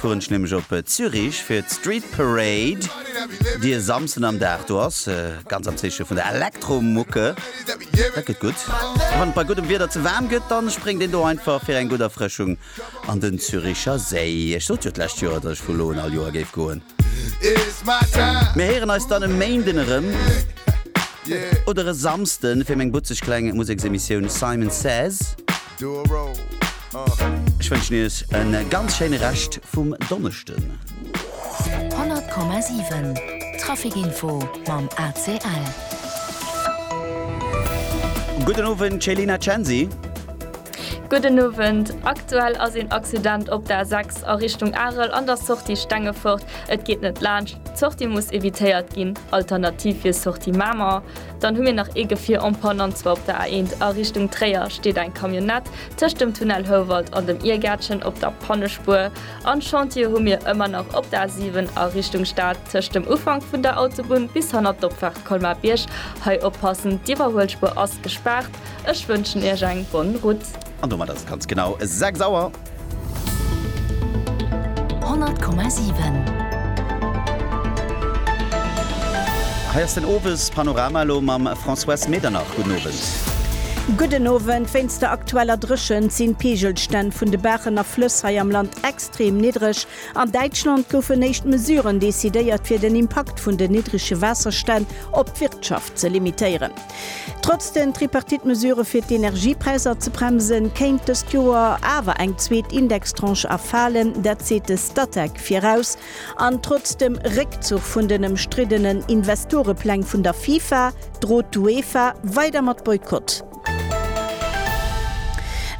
fueren ech nämlech op Zürich fir d'Street Parade, déi e Samsden am Dag do ass. Ganz am Zeeche vun der Elektromucke. Dat gëtt gutt. A wann et bei guddem Wieder ze waarm gëtt, da spréngt een do einfach fir eng gutt Erfrëschung an den Züricher Séi. Ech sot jo d'lescht Joer, datt ech vu lo un all Joer géif goen. Mir héieren eis dann e Méinden erëm oder e Samsden fir meng butzeg kleng Museksemissioun Simon Says. Ech wënschen iech e ganz schéine Rescht vum Donneschden. 100,7 Traficinfo mam ACL. Gudden Owend Céline a Chanzy. Gudden Owend, Aktuell ass een Accident op der A6. Esch a Richtung Arel an der Sortie Stengefort, et geet net laanscht, d'Sortie muss evitéiert ginn, alternativ wier Sortie Mamer. Dann hu mir nach ee Gefier en panne an zwar op der A1 a Richtung Tréier steet eng Camionnette tëscht dem Tunnel Houwald an dem Iergärtchen op der Pannespuer an Chantiere hu mir ëmmer nach op der A7 a Richtung Stad tëscht dem Ufank vun der Autobunn bis hanner d'Opfahrt Colmar-Bierg. Hei oppassen, d'Iwwerhuelspuer ass gespaart. Ech wënschen Iech eng bonne route. An domat ass et ganz genau 6 Auer. 100,7. Hei ass den Owespanorama elo mam Françoise Medernach. Gudden Owend. Gudden Owend. Wéinst der aktueller Dréchent sinn d'Peegelstänn vun de Baachen a Flëss hei am Land extrem niddreg. An Däitschland goufen éischt Mesuren decidéiert, fir den Impakt vun den niddrege Waasserstänn op d'Wirtschaft ze limitéieren. Trotz den Tripartite-Mesurë fir d'Energiepräisser ze bremsen, kéint dëst Joer awer eng zweet Indextranche erfalen. Dat seet de Statec viraus. An trotz dem Réckzuch vun den ëmstriddenen Investorepläng vun der FIFA, drot d'UEFA weider mat Boykott.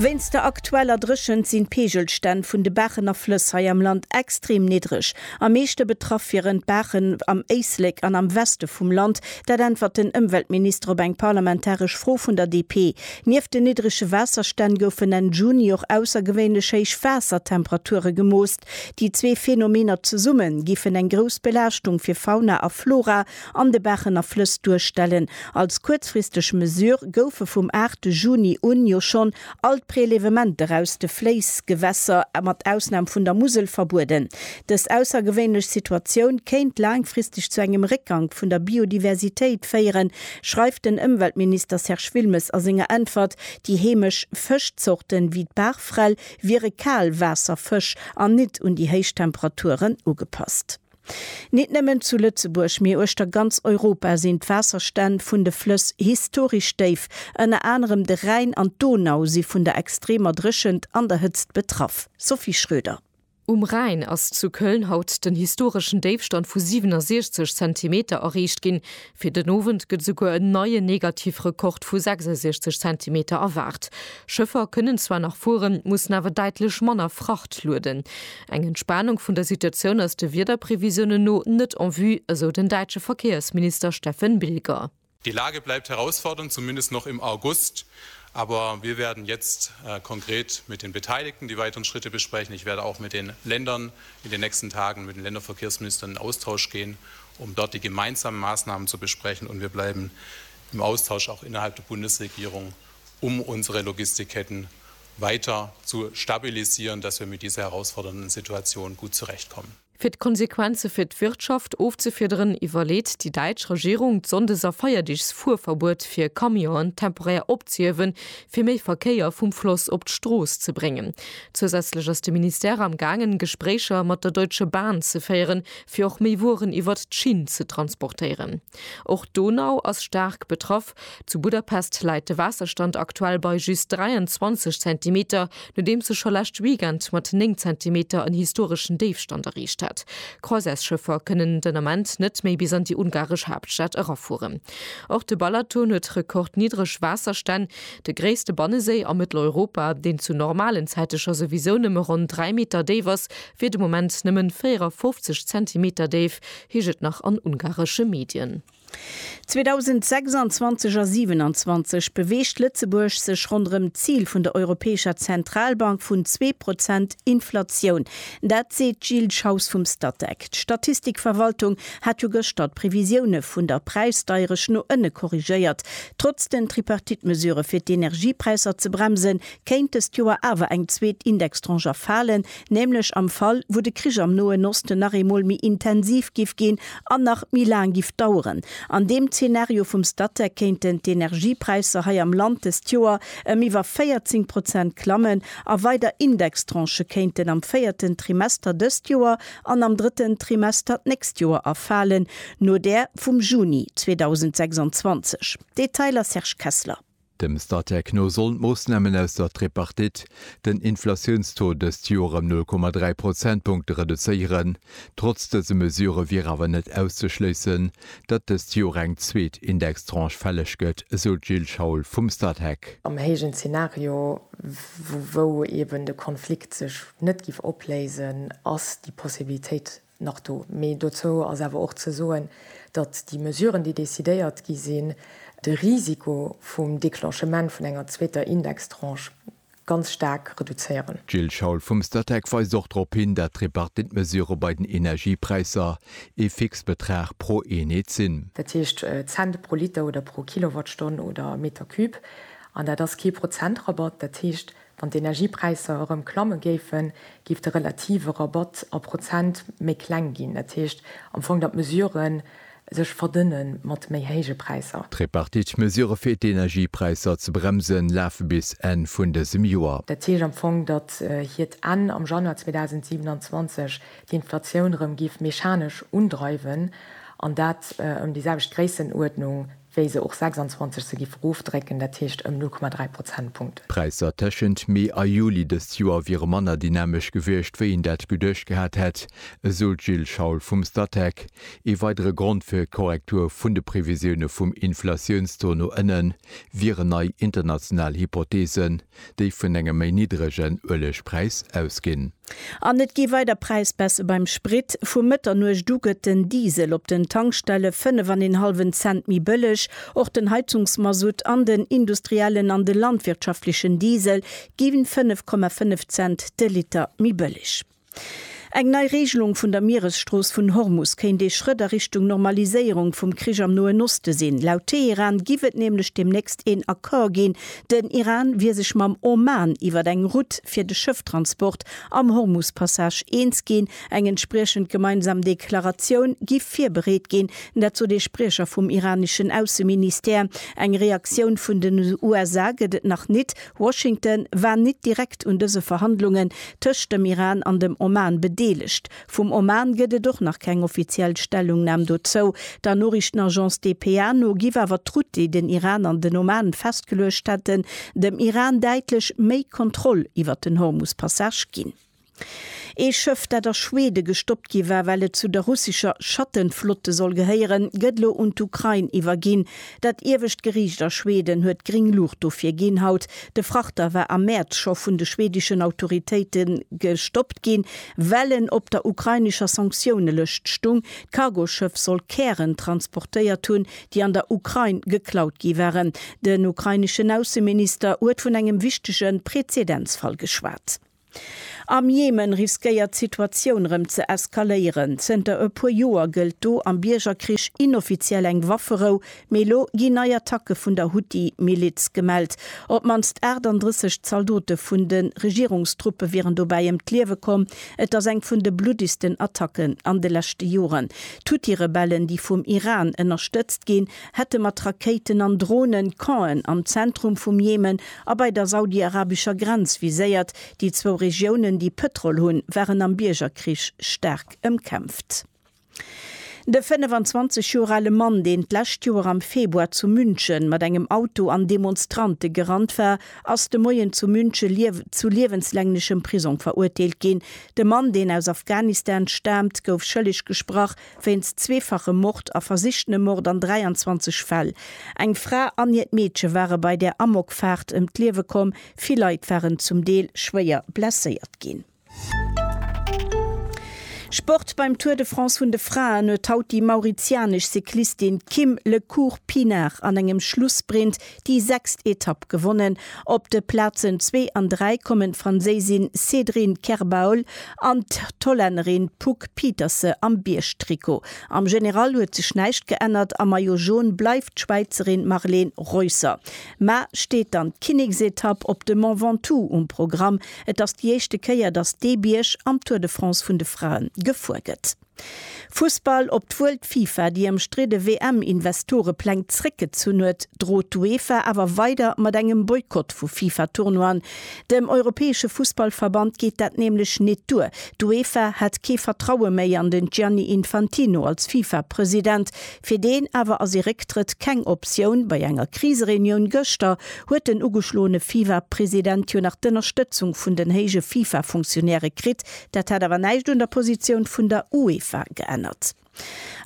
Wéinst der aktueller Dréchent sinn d'Peegelstänn vun de Baachen a Flëss hei am Land extrem niddreg. Am meeschte betraff wieren d'Baachen am Éislek an am Weste vum Land. Dat äntwert den Ëmweltminister op eng parlamentaresch Fro vun der DP. Nieft den niddrege Waasserstänn goufen Enn Juni och aussergewéinlech héich Waassertemperature gemoost. Déi zwee Phänomener zesumme giffen eng grouss Belaaschtung fir Fauna a Flora an de Bächen a Flëss duerstellen. Als kuerzfristeg Mesure goufe vum 8 Juni un jo schonn all d'Prelevementer aus de Fléissgewässer, mat Ausnam vun der Musel, verbueden. Dës aussergewéinlech Situatioun kéint laangfristeg zu engem Réckgank vun der Biodiversitéit féieren, schreift den Ëmweltminister Serge Wilmes a senger Äntwert. Déi heemesch Fëschzorten, wéi d'Barfrell, wiere Kaalwaasserfësch an nit un déi héich Temperaturen ugepasst. Nit nëmmen zu Lëtzebuerg, mee uechter ganz Europa sinn d'Waasserstänn vun de Flëss historesch déif. Ënner anerem de Rhäin an d'Donau si vun der extremer Dréchent an der Hëtzt betraff. Sophie Schröder. Um Rhäin ass zu Köln haut den historeschen Déifstand vu 67 Zentimeter erreecht ginn. Fir den Owend gëtt esouguer en neien Negativrekord vu 66 Zentimeter erwaart. Schëffer kënnen zwar nach fueren, mussen awer däitlech manner Fracht lueden. Eng Entspanung vun der Situatioun ass de Wiederprevisiounen no net en vue, esou den däitsche Verkéiersminister Steffen Bilger. Die Lage bleibt herausfordernd, zumindest noch im August, aber wir werden jetzt konkret mit den Beteiligten die weiteren Schritte besprechen. Ich werde auch mit den Ländern in den nächsten Tagen, mit den Länderverkehrsministern in Austausch gehen, um dort die gemeinsamen Maßnahmen zu besprechen, und wir bleiben im Austausch auch innerhalb der Bundesregierung, um unsere Logistikketten weiter zu stabilisieren, dass wir mit dieser herausfordernden Situation gut zurechtkommen. Fir d'Konsequenze fir d'Wirtschaft ofzefiederen, iwwerleet déi däitsch Regierung, d'Sonndes a Feierdeegsfuerverbuet fir Camionen temporär opzehiewen, fir méi Verkéier vum Floss op d'Strooss ze bréngen. Zousätzlech ass de Ministère am gaangen, Gespréicher mat der Deutsche Bahn ze féieren, fir och méi Wueren iwwert d'Schinn ze transportéieren. Och d'Donau ass staark betraff. Zu Budapest läit de Waasserstand aktuell bei just 23 Zentimeter, nodeems e scho lescht Weekend mat 9 Zentimeter en historeschen Déifstand erreecht hat. Croisièresschëffer kënnen den Ament net méi bis an déi ungaresch Haaptstad erafueren. Och de Balaton huet rekordniddreg Waasserstänn, de gréisste Banneséi a Mëtteleuropa, deen zu normalen Zäite scho souwisou nëmme ronn 3 Meter déif ass, wier de Moment nëmmen 54 Zentimeter déif, heescht et nach an ungaresche Medien. 2026 a 27 beweegt Lëtzebuerg sech ronderëm d'Zil vun der Europäescher Zentralbank vun zwee Prozent Inflatioun. Dat seet d'Jill Schaus vum Statec. D'Statistikverwaltung hat jo gëschter d'Previsioune vun der Präisdeieresch no ënne korrigéiert. Trotz den Tripartite-Mesurë fir d'Energiepräisser ze bremsen, kéint dëst Joer awer eng zweet Indextranche erfalen, nämlech am Fall wou de Krich am Noen Osten nach eemol méi intensiv giff ginn an nach méi laang giff daueren. An deem Zeenario vum Statec kéinten d'Energiepräisser hei am Land dëst Joer ëm iwwer 14 Prozent klammen a weider Indextranchë kéinten am véierten Trimester dëst Joer an am drëtten Trimester d'nächst Joer erfalen, no där vum Juni 2026. Detailer Serge Kessler. Dem Statec no sollen d'Moossnamen aus der Tripartite den Inflatiounstaux dëst Joer ëm 0,3 Prozentpunkte reduzéieren. Trotz dëse Mesure wier awer net auszeschléissen, datt dëst Joer eng zweet Indextranche fälleg gëtt, esou d'Jill Schaul vum Statec. Am héijen Zenario, wou eben de Konflikt sech net giff opléisen, ass déi Possibilitéit nach do. Mee dozou ass awer och ze soen, datt déi Mesuren, déi decidéiert gi sinn, de Risiko vum Declenchement vun enger zweeter Indextranche ganz staark reduzéieren. D'Jill Schaul vum Statec weist och drop hin, datt d'Tripartite-Mesurë bei den Energiepräisser ee Fixbetrag pro Eenheet sinn. Dat heescht Cent pro Liter oder pro Kilowattstonn oder Metercube. An dat ass kee Prozentrabatt. Dat heescht, Wann d'Energiepräisser erëm klamme géifen, géif de relative Rabatt a Prozent méi kleng ginn. Dat heescht am Fong, datt d'Mesurë sech verdënne mat méi héije Präisser. D'Tripartite-Mesurë fir d'Energiepräisser ze bremsen, lafe bis Enn vun dësem Joer. Dat heescht am Fong, datt hiert Enn am Januar 2027 d'Inflatioun erëm géif mechanesch undreiwen, an dat ëm déi selwecht Gréissenuerdnung wéi se och 26 se giff erofdrécken, dat heescht ëm 0,3 Prozentpunkten. D'Präisser tëschent Mee a Juli dëst Joer wiere manner dynamesch gewiescht, wéi een dat geduecht gehat hätt, esou d'Jill Schaul vum Statec. Ee weidere Grond fir d'Korrektur vun de Previsioune vum Inflatiounstaux no ënnen, wieren nei international Hypotheesen. déi vun engem méi niddregen Uelegpräis ausginn. An et gi weider Präisbaisse beim Sprit. Vu Mëtternuecht u gëtt den Diesel op den Tankstelle fënnef an een hallwen Cent méi bëlleg. Och den Heizungsmasutt an den industriellen an de landwirtschaftlechen Diesel gi fënnef Komma fënnef Cent de Liter méi bëlleg. Eng nei Reegelung vun der Mieresstrooss vun Hormus kéint ee Schrëtt a Richtung Normaliséierung vum Krich am Noen Oste sinn. Laut Teheran giff et nämlech deemnächst een Accord ginn. Den Iran wier sech mam Oman iwwer eng Route fir de Schëfftransport am Hormus-Passage eens ginn. Eng entspriechend gemeinsam Deklaratioun giff virbereet ginn, dat sot ee Spriecher vum iraneschen Ausseministère. Eng Reaktioun vun den USA gëtt et nach nit. Washington war nit direkt un dëse Verhandlungen tëscht dem Iran an dem Oman bedeelegt. Vum Oman gëtt et och nach keng offiziell Stellungnam dozou. Der Noriichtenagence dpa no giff awer d'Route, déi den Iran an den Oman festgeluecht hätten, dem Iran däitlech méi Kontroll iwwert den Hormus-Passage ginn. Ee Schëff, dat a Schwede gestoppt gi war, well et zu der russescher Schattenflotte soll gehéieren, gëtt elo un d'Ukrain iwwerginn. Dat iewescht Geriicht a Schweden huet gring Luucht dofir ginn haut. De Frachter war am Mäerz scho vun de schwedeschen Autoritéite gestoppt ginn, well en op der ukrainescher Sanktiounelëscht stung. D'Cargoschëff soll Kären transportéiert hunn, déi an der Ukrain geklaut gi waren. Den ukraineschen Ausseminister huet vun engem wichtege Prezedenzfall geschwat. Am Jemen riskéiert d'Situatioun rëm ze eskaléieren. Zënter e puer Joer gëllt do am Biergerkrich inoffiziell eng Wafferou, mee elo ginn nei Attacke vun der Huthi-Miliz gemellt. Op d'mannst 38 Zaldote vun de Regierungstruppe wieren dobäi ëm d'Liewe komm. Et ass eng vun de bluddigsten Attacken an de leschte Joren. D'Huthi-Rebellen, déi vum Iran ënnerstëtzt ginn, hätte mat Rakéiten an Dronen d'Campen am Zentrum vum Jemen a bei der saudiarabescher Grenz viséiert. Déi zwou Regiounen, déi Pëtrol hunn, waren am Biergerkrich staark ëmkämpft. De 25 Joer ale Mann, deen d'lescht Joer am Februar zu München mat engem Auto an Demonstrante gerannt war, ass de Moien zu München zu liewenslänglechem Prisong verurteelt ginn. De Mann, deen aus Afghanistan staamt, gouf schëlleg gesprach, wéinst zweefachem Mord a versichtenem Mord an 23 Fäll. Eng Fra an hiert Meedche ware bei der Amokfaart ëm d'Liewe komm, vill Leit waren zum Deel schwéier blesséiert ginn. Sport, Beim Tour de France vun de Fraen huet haut déi mauritianesch Cyclistin Kim Le Cours Pinard an engem Schlussprint déi sechst Etapp gewonnen. Op de Plazen zwee an dräi kommen d'Franséisin Cédrine Kerbaul an d'Hollännerin Poek Pieterse am Biergtrikot. Am General huet sech näischt geännert, am Maillot Jaune bleift d'Schwäizerin Marlene Reusser. Mar steet dann d'Kinneksetapp op de Mont Ventoux um Programm. Et ass déi éischte Kéier, datt dee Bierg am Tour de France vun de Frae gefuer gëtt. Fussball, Op d'wuel d'FIFA déi ëmstridde WM-Investorepläng zréckgezunn huet, drot d'UEFA awer weider mat engem Boykott vu FIFA-Tournoien. Dem europäesche Fussballverband geet dat nämlech nit duer. D'UEFA hätt kee Vertraue méi an den Gianni Infantino als FIFA-President. Fir deen awer ass ee Récktrëtt keng Optioun. Bei enger Krisereunioun gëschter huet den ugeschloene FIFA-President jo nach d'Ënnerstëtzung vun den héije FIFA-Funktionäre kritt, Dat hätt awer näischt un der Positioun vun der UEFA geännert.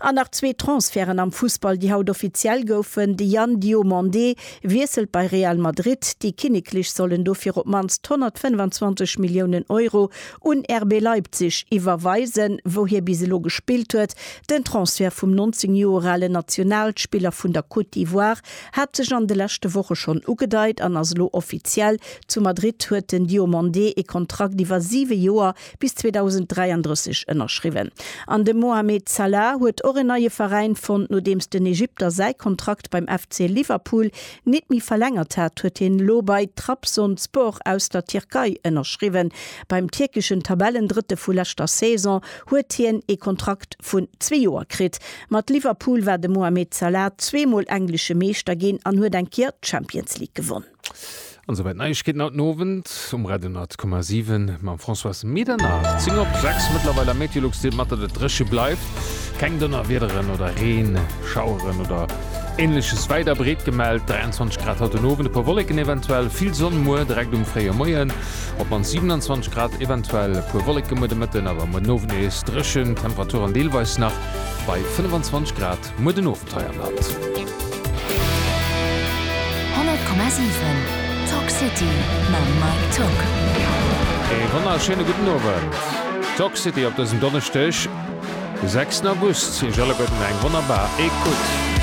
An nach zwee Transferten am Fussball, déi haut offiziell goufen, De Yann Diomandé wiesselt bei Real Madrid, déi Kinneklech sollen dofir op d'mannst 125 Milliounen Euro un RB Leipzig iwwerweisen, wou hie bis elo gespillt huet. Den Transfert vum 19 Joer ale Nationalspiller vun der Côte d'Ivoire Hat sech an de leschte Woche schonn ugedeit an ass elo offiziell, Zu Madrid huet den Diomandé ee Kontrakt iwwer siwe Joer bis 2033 ënnerschriwwen. An de Mohamed Salah huet och en neie Veräin fonnt. Nodeems den Egypter säi Kontrakt beim FC Liverpool nit méi verlängert hat, huet hien elo bei Trabzonspor aus der Tierkei ënnerschriwwen. Beim tierkeschen Tabellendrëtte vu leschter Saison huet hien ee Kontrakt vun zwee Joer kritt. Mat Liverpool war de Mohamed Salah zweemol englesche Meeschter ginn an huet eng Kéier d'Champions League gewonn. An esouwäit d'Neiegkeeten haut den Owend um Radio 10,7 mam Françoise Medernach. 10 op 6 mëttlerweil am Meteolux deelt mat, datt et dréche bleift. Keng Donnerwiederen oder Reen, Schaueren oder Änleches wäit a breet gemellt. 23 Grad haut den Owend, e puer Wolleken eventuell, vill Sonn muer direkt um fréie Moien. Op mannst 27 Grad, eventuell e puer Wolleke muer de Mëtten, awer muer den Owend nees dréchen, Temperaturen deelweis nach Bei 25 Grad muer den Owend hei am Land. 100,7 Talk City mam Mike Tück. Ee wonnerschéine gudden Owend. Talk City op dësem Donneschdeg, de 6 August. Iech alleguerten eng wonnerbar Ecoute.